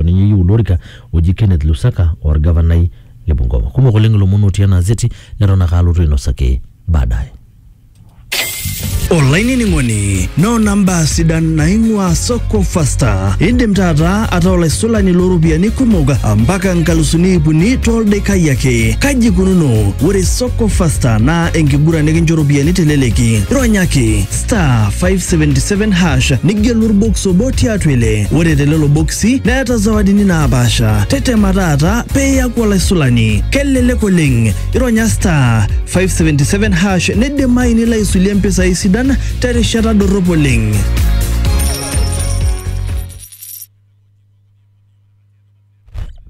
ninye eyieu ilo orika oji Kenneth Lusaka o orgavanai le Bungoma. Kumok oleng ilomon otii ena azeti neton ake alotu ainosaki baadaye. olainining'oni noona mbaa sidan naing'ua soko fasta indim taata ataa olaisulani looropiyiani kumok mpaka nkalusuni iip uni toldaikai ake kaji ikununo ore soko fasta naa enkiguran nikincho ropiyiani teleleki ronyaki star 577 hash nigelu orbox obo tiatua ile ore telelo boksi neeta zawadini naapaasha tetema taata peeyaku olaisulani kelelek oleng ironya star 577 hash neidimayu nilo aisulie mpisai sidan terishata dorrop oleng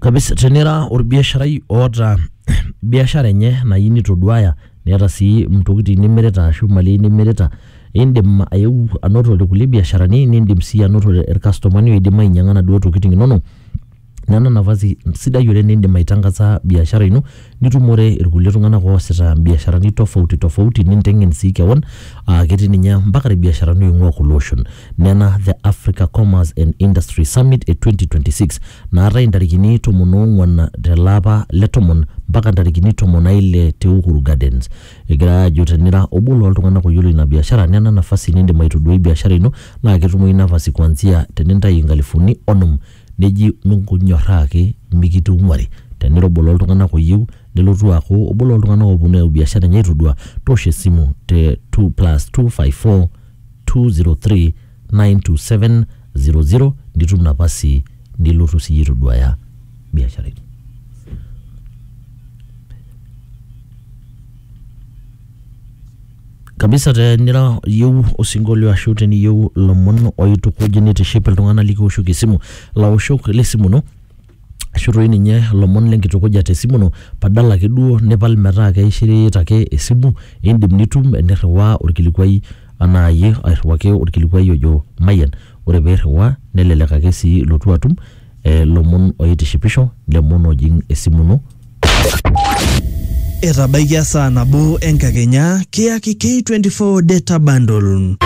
kabisa tenira orbiasharai oota biashara enye nayeu nitoduaya neeta sii ntokitin nimirita ashu mali nimirita, iindim ayeu anotore kulie biasharani niindim sii anotore ircustomani oidim ainyang'a naduo tokitin inonok. Nena nafasi sidai oleng' niindim aitang'asa biashara ino nitumore irkulie tung'anak oasita mbiasharani tofauti tofauti ninteng'en sii keon aake etii ninye mpaka irbiasharani oing'ua kulie oshon. Nena The Africa Commerce and Industry Summit e 2026 naatae intarikini tomon oong'uan telapa le tomon mpaka intarikini tomon aile te Uhuru Gardens. Egirai aajo tenira obo looltung'anak oyiolo ina biashara nena nafasi nindim aitoduai biashara ino naa ketumoyu nafasi kuanzia tenintayu inkalifuni onom neji minyorraa ake mikitung'uari. Tenira obo looltung'anak oyieu nelotu aaku obo looltung'anak ooponu ayau biashara enye aitodua toosho esimu te 2 plus 254 203 927 00 nitum napasi nilotu siyie aitoduaya biashara ino. kabisa tenira iyieu osinkolio ashu teniyieu ilomon oitukuj nitiship iltung'anak likiwoshoki esimu laoshok le simu ino ashu toi ninye ilomon le nkitukuja te simu ino badala ake duo nipal metaa keishirita ake esimu, iindim nitum eniriwaa orkilikuai enaa iyie airiwaki orkilikuai ojo mayian. Ore piiriwaa nelelek ake sii ilotu atum ilomon oitishipisho, ilomon oojing' esimu ino. Etabaikia saa nabo enkakenya kiyaki K24 data bundle.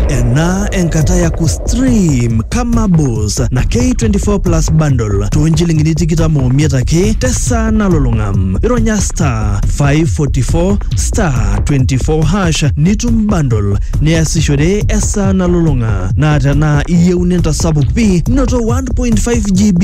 Ena enkata ya kustream kama boss na K24 plus bundle too nchilingini tikitam omiet ake tesaa nalulung'a. Ironya star 544 star 24 hash nitum bundle niasishore esaa nalulung'a. Naa tenaa iyieu nintasapuk pi noto 1.5 GB